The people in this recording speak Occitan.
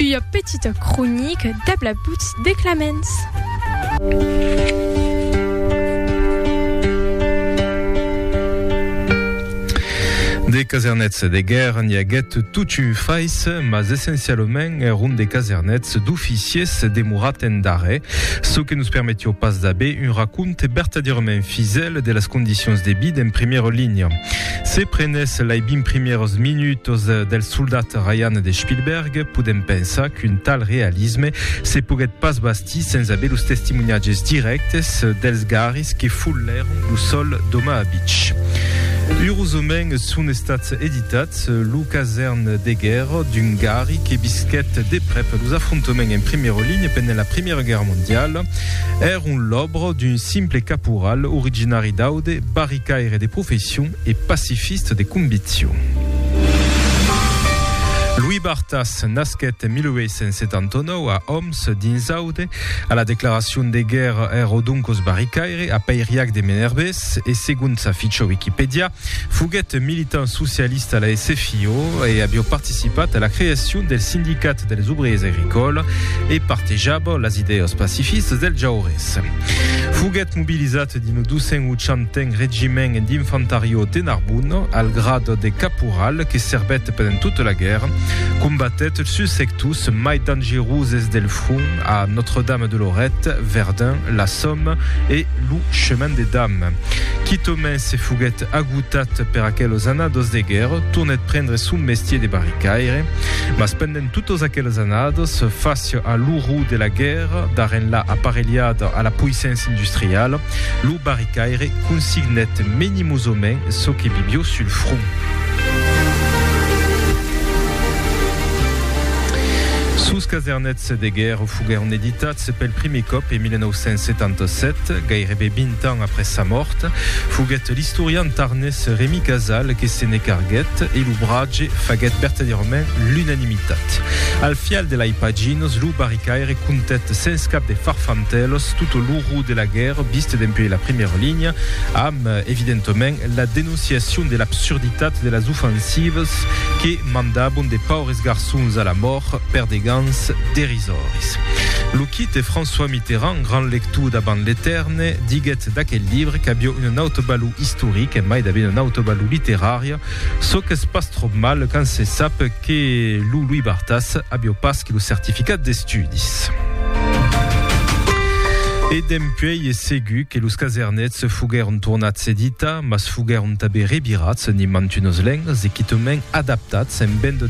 Ua petita cronica dab la butz de Claments. De casernets de guèrra n'i aguèt tot un fais, mas essencialament èron de casernets d'oficiers demorat en darrèr, çò que nos permetió pas d'aver un raconte vertadièrament fisèl de las condicions de vida en primièra linha. Se prenès lei 20 primièrs minuts del Soldat Ryan de Spielberg, podèm pensar qu'un tal realisme se poguèt pas bastir sens aver los testimoniatges dirèctes dels garris que follèron lo sòl d'Omaha Beach. Urosament son estats editats lo casèrn de guèrra d'un garri que visquèt de prèp los afrontaments en primièra linha pendent la Primièra Guèrra Mondiala. Èron l'òbra d'un simple caporal originari d'Aude, Barry Caire de profession e pacifiste de conviccion. Louis Barthas nasquèt en 1879 a Òms, dins Aude. A la declaracion de guèrra er Odoncos Barricaire, a pairiac de Menerbés e segon sa ficha Wikipèdia, foguèt militant socialista a la SFIO e aviá participat a la creacion del Sindicat dels Obriers Agricòles e partejava las idèas pacifistas dels Jaures. Foguèt mobilizat dins lo 280n Regiment d'Infantariò de Narbona, al grad de caporal, que servèt pendent tota la guèrra. Combatèt sus sectors mai dangeroses del front, a Notre-Dame de Lorette, Verdun, la Somme e lo Chemin des Dames. Quitòmai se foguèt agotat per aquelos annados de guèrra, tornèt prendre son mestier de barricaire. Mas pendent. En totes aqueles anades, fàcia a l'orror de la guèrra, dar enlà aparelhada a la poissença industriala, lo barricaire consignèt menimosament çò que bibió sul front. Sos casernets de guèrra foguèron editats. Se pel primièr còp en 1977, gairebe 20 ans après sa mòrt, foguèt l'istorian tarnés Remi Casal que se ne carguèt e lo bratge faguèt vertadièrament l'unanimitat. Al fial de lai paginas, lo barricaire contèt sens cap de farfantèlas tot l'orror de la guèrra vist dempuèi la primièra linha, amb, evidentement, la denonciacion de l'absurditat de las ofansivas que mandabon de paures garçons a la mòrt per de gans derisions. Zòris. Lo quite François Mitterrand, grand lector davant l'etèrne, diguèt d'aquel libre qu'aviá una nauta valor istorica e mai davain una nauta valor literària, çò qu'es pas tròp mal quand se sap que lo Louis Barthas aviá pas que lo certificat d'estudis. E dempuèi es segur que los casernets foguèron tornats editar, mas foguèron tanben revirats en imantunos lengas e quitament adaptats en ben de.